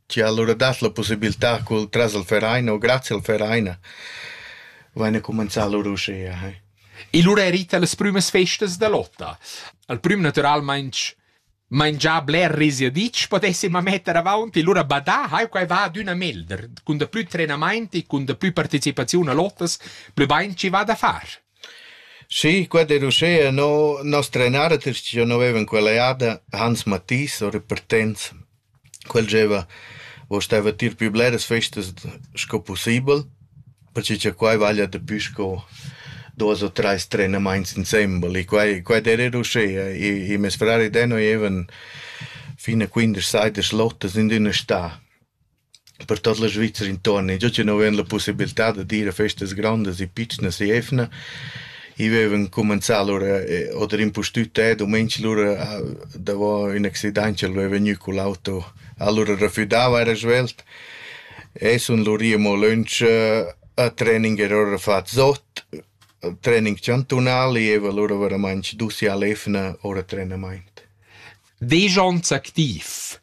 Chi ha alura dat la pussibiltà cul tras al Vereina o grazia al Vereina vaina cumanzà lur uschea. E lura erita las prümas festas da lotta. Al prüm natüralmaing mangià bler risiaditsch potessima metter avaunt e lura badà, hai quai va adüna melder, cun da plü trenamaint e cun da plü partecipaziun a lottas, plü bain chi va da far. Schi, quella era uschea no. Nos trenarters chi giò vevan quella jada, Hans Mathis o Repartenz, quel gieva, vo steva tier pü bleras festas sco pussibel, perche cha quai vaglia dapü sco duos o trais trenamaints insembel e quai quai d'eira eir uschea. I meis frar ed eu evan fin a quindesch seis da schlottas in üna stà. Per tot la Svizra intuorn in giò chi nu vain la pussibiltà da dir a festas grondas e pitschnas e evna, i vaivan cumanzà lura oder impustüt e dumenic lura davo ün accident ch'el vaiva gnü cun l'auto, alura refüdava eira svelt e sun lur i amo lönch a training era ora fat zot, training chantunal, i eva lura veramaing dus i a l'evna ora trenamaint. Vegiond activ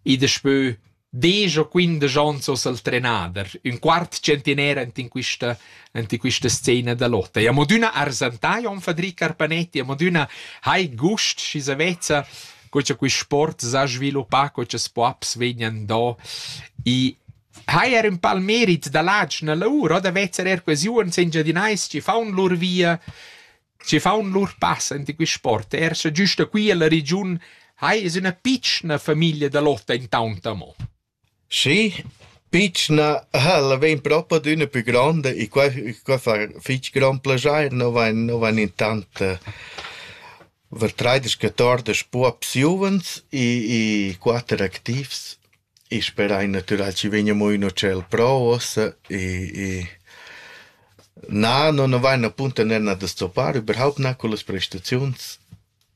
I daspö desch o quindesch ons ho s'el trenader ün quart tschentiner ant in quista ant in quista scena da lotta. E amo d'üna arsantà Jon Fadri Carpanetti, amo d'üna hai gust schi sa vezza co cha quist sport s'ha sviluppà, co cha spuaps vegnan do. I hai er ün pal merit da ladsch nella our, o da vezzer er quasi uonn sengiadinais chi faun lur via Schi faun lur pass enta quist sport eir scha giüst da qui alla regiun hai es üna pitschna famiglia da lotta intaunt amo. Schi, pitschna ha'la vain propi adüna pü gronda e quai qua fa fich grond plaschair, no vain no vain intant vertraidas, catordisch puops giuvens e e quatter activs. I sperai natüral chi vegna amo ün ucel pro uossa e e na, no nu vain appunto nerna da stoppar überhaupt na cullas prestaziuns.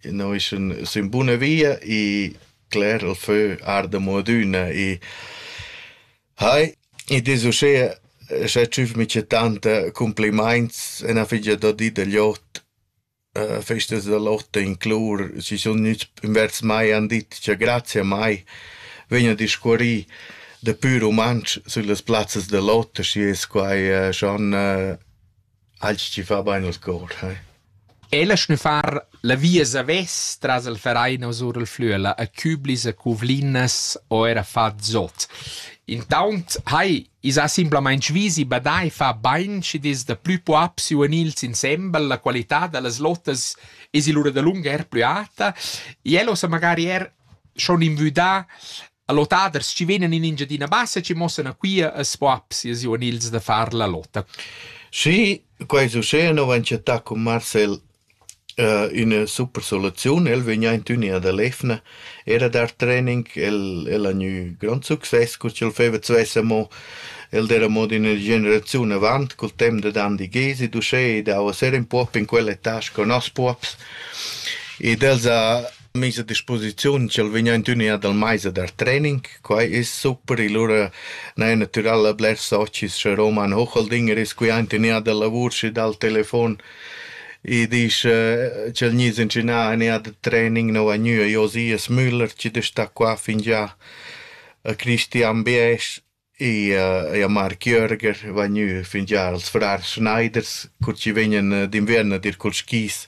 No is ün sün buna via e cler il fö arda amo adüna e hai, id es uschea scha tschüfmi c'è tanta cumplimaints e na figia da dir da gl'ot. Festas da lotta inclur, schi sun gnüts invers mai han dit cha grazia a mai vegn a discurrì dapü rumantsch süllas plazzas da lotta, schi es quai schon alch chi fa bain al cor, eh. Ella schnüffar la via savess tras il Vereinos our il Flüela a Küblis, a Cuvlinas o eir a far Zot. Intaunt hai I's ha simplamaing vis e badà e fà bain schi'd es da plü puops u gnils insembel, la qualità da las lotas es lura dalunga eir plü alta. El ho sa magari eir schon invüdà a lotaders chi vegnan in Engiadina Bassa chi mossan a Quia as puops e u gnils da far la lota. Sì, quai succeda, no vain chattà cun Marcel Üna super soluziun. El vegn aint ün'ia da l'efna. Era dar training, el el ha gnü grond success cu ch'el feva d'svess amo. El d'eira amo d'üna generaziun avant, cul temp dad Andi Gezi, d'uschè ed haua ser ün puop in quella età sco noss puops. Ed els ha mis a disposiziun ch'el vegn aint ün ea dal mais a dar training. Quai es super, e lura n'haja natüral blers socis cha Roman Hocheldinger es qui aint ün ea da lavur sü dal telefon e disch ch'el gnis incinà ün ea da training nouva gnü a Josias Müller chi da sta qua fingià a Christian Biesch Eir Marc Jörger vagnü fingià als frars Schneiders cur chi vegnan d'inviern a dir culs skis.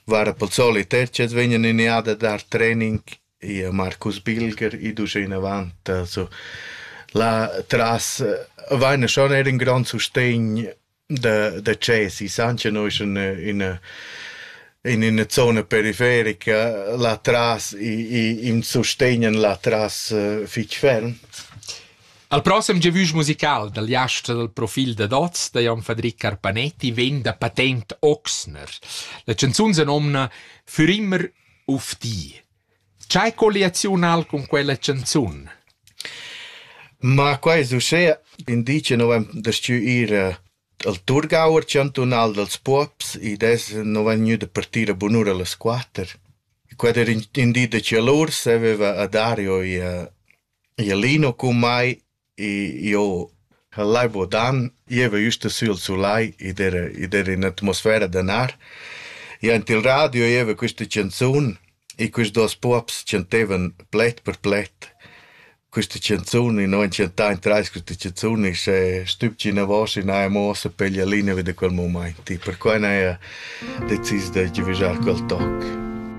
Var pel solit er ch'els vegnan in eà da dar trening, eir Marcus Bilger i dusch e inavant. Also la tras vaina schon eir ün grand sustegn da, da Cesi, Sancha noi in ina in ina zona periferica là tras im sustegnan là tras fich ferm. Al prossem gevüsch musical dal jast dal profil da Dots da Jan Fadric Carpanetti vegn da patent Oxner. La chanzun se nomna Für immer auf die. Ch'ei colliaziun ha'l cun quella canzun? Ma quai es uschea, in di che nu vain dastgü ir al Thurgauer chantunal dals puobs, id es nu vain gnü da partir a bunura las quatter. Quai era in, in di da chalur, saveva a Dario e a, e a Lino cun mai Io ch'al lai vo dan, gieva jüst sü al sulai ed era ed era in atmosfera da nar. I aint il radio gieva quista chanzun e quist duos pops chantevan pled per pled quista chanzun e no han chantà in trais quista chanzun e sche stübgi inavos e n'haja amo sa peglia linea vi da quel mumaint e perquai n'haja decis da giavüschar quel toc.